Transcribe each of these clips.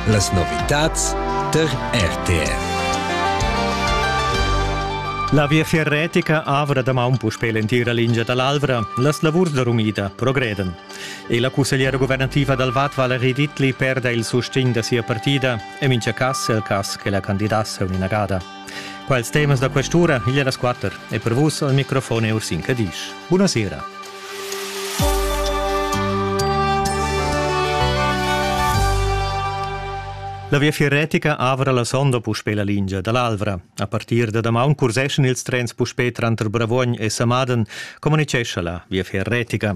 Las novitads tar RTR. La viafier retica avra damaun puspè l'entira lingia da l'Alvra. Las lavurs da rumida progredan. E la cussegliera guvernativa dal Vad Valerie Dittli perda il sustegn da sia partida e mincha cas è il cas che la candidasse un'inagada. Quels temas da quest'ura igl era squatter e per vus al microfon è Ursin Cadisch. Buonasera. La viafier retica avra la sonda puspè la lingia da l'Alvra. A partir da damaun curseschan ils trens puspè tranter Bravuogn e Samaden, communicescha la viafier retica.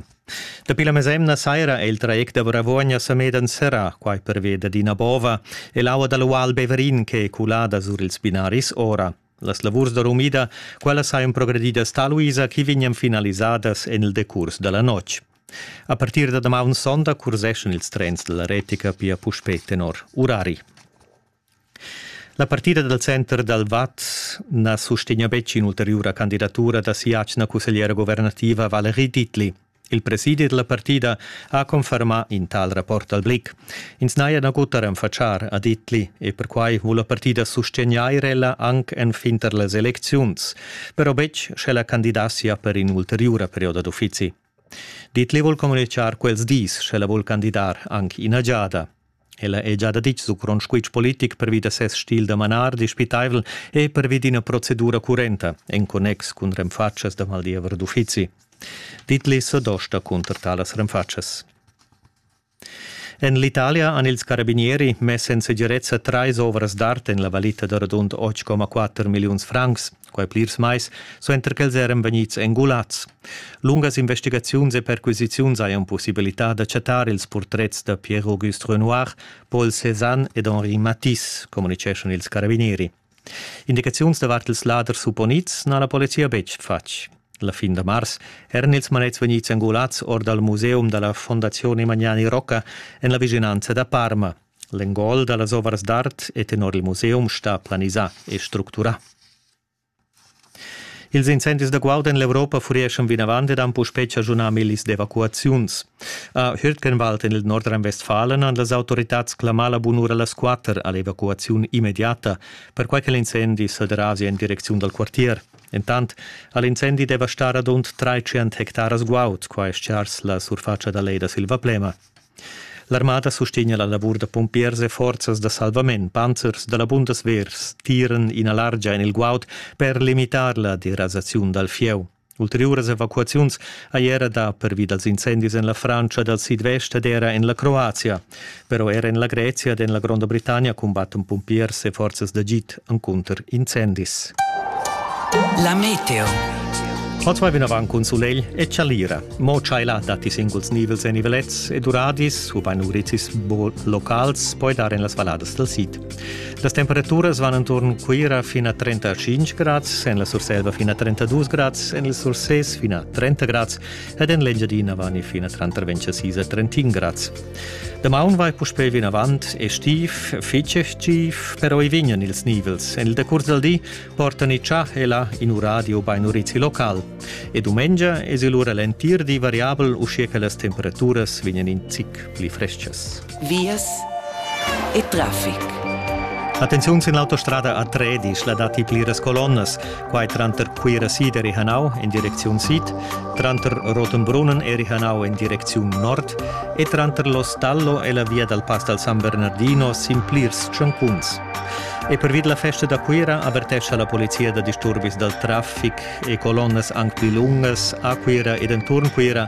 Dapi la mesemna saira è il traject da Bravuogna Samedan serrà, quai pervia dad ina bova e l'aua dal ual Beverin ch'è culada sur ils binaris ora. Las lavurs da rumida, quellas hajan progredidas taluisa chi vegnan finalisadas en il decurs da la notg. A partir da damaun sonda curseschan ils trens dalla retica pia puspè tenor urari. La partida dal center dal Vad na sustegna betg in'ulteriura candidatura da sia atgna cussegliera guvernativa Valerie Ditli. Il presidi da la partida ha confermà in tal rapport al Blick. Ins n'haja nagut a renfatschar a Ditli e perquai vul la partida sustegnair ella anc enfin tar las elecziuns, però betg sch'ella candidassia per in ulteriura perioda d'uffizi. Ditli vul communitgar quels dis, sch'ella vul candidar anc ina giada. Ella è gia ditg su grond squitsch politic pervi da ses stil da manar dispitaivel e pervi d'ina procedura currenta en connex cun renfatschas da maldiever d'uffizi. Ditli sa dosta cunter talas renfatschas. En l'Italia han ils carabinieri mess en segirezza trais ovras d'art en la valita da radund 8,4 milliuns francs, quai plirs mais, suenter ch'els eran vegnids engulads. Lungas investigaziuns e perquisiziuns hajan pussibilità da chattar ils purtrets da Pierre-Auguste Renoir, Paul Cézanne ed Henri Matisse, communiceschan ils carabinieri. Indicaziuns davart ils laders supponids n'ha la polizia betg fatg. La fin da mars eran ils manets vegnids angulads or dal museum da la Fondazione Magnani Rocca en la vischinanza da Parma. L'engol da las ovras d'art è tenor il museum stà planisà e structurà. Ils incendis da guaud en l'Europa furieschan vinavant ed han puspè chaschunà millis d'evacuaziuns. A Hürtgenwald en il Nordrhein-Westfalen han las autoritads clamà la bunura las quatter a l'evacuaziun immediata, perquai che l'incendi sa derasia en direcziun dal quartier. Entant ha l'incendi devastà radund 300 hectaras guaud, qua è stgars la surfatscha da lei da Silvaplema. L'armada sustegna la lavur da pumpiers e forzas da salvament. Panzers da la Bundeswehrs tiran ina largia en il guaud per limitar la derasaziun dal fieu. Ulteriuras evacuaziuns hai era dà pervi dals incendis en la Frantscha dal sidvest ed era en la Croazia. Però era en la Grezia ed en la Gronda Britannia cumbattan pumpiers e forzas d'agid. encunter incendis. La meteo. Ma zwei vinavant cun sulegl e chalira. Mo chaila datti singuls nivels e nivelets ed uradis, ubain urizis locals, poi dar en las valladas del sid. Las temperaturas van intorno Cuira fino a 35 gradi, en la Surselva fino a 32 gradi, en il Surses fino a 30 gradi ed en l'Engiadina vani fina tranter 26 e 31 grads. Damaun vai puspei vinavant estiv, fitg estiv, però i vignan ils nivels. En il decurs del di portan i tschà e là in uradio bein urizi local. E dumengia es il ura l'entir di variabel, uschia che las temperaturas vignan in zic pli frestgas. vias e traffic. Attenziun sin l'autostrada a Tredisch la datti pliras colonnas, quai tranter Cuira sid e Rihanau en direcziun sid, tranter Rotenbrunnen e Rihanau en direcziun nord e tranter l'Ostallo e la via dal Pass dal San Bernardino sin plirs tschancuns. E pervi la festa da Cuira avertescha la polizia da disturbis dal traffic e colonnas anc pli lungas a Cuira ed enturn Cuira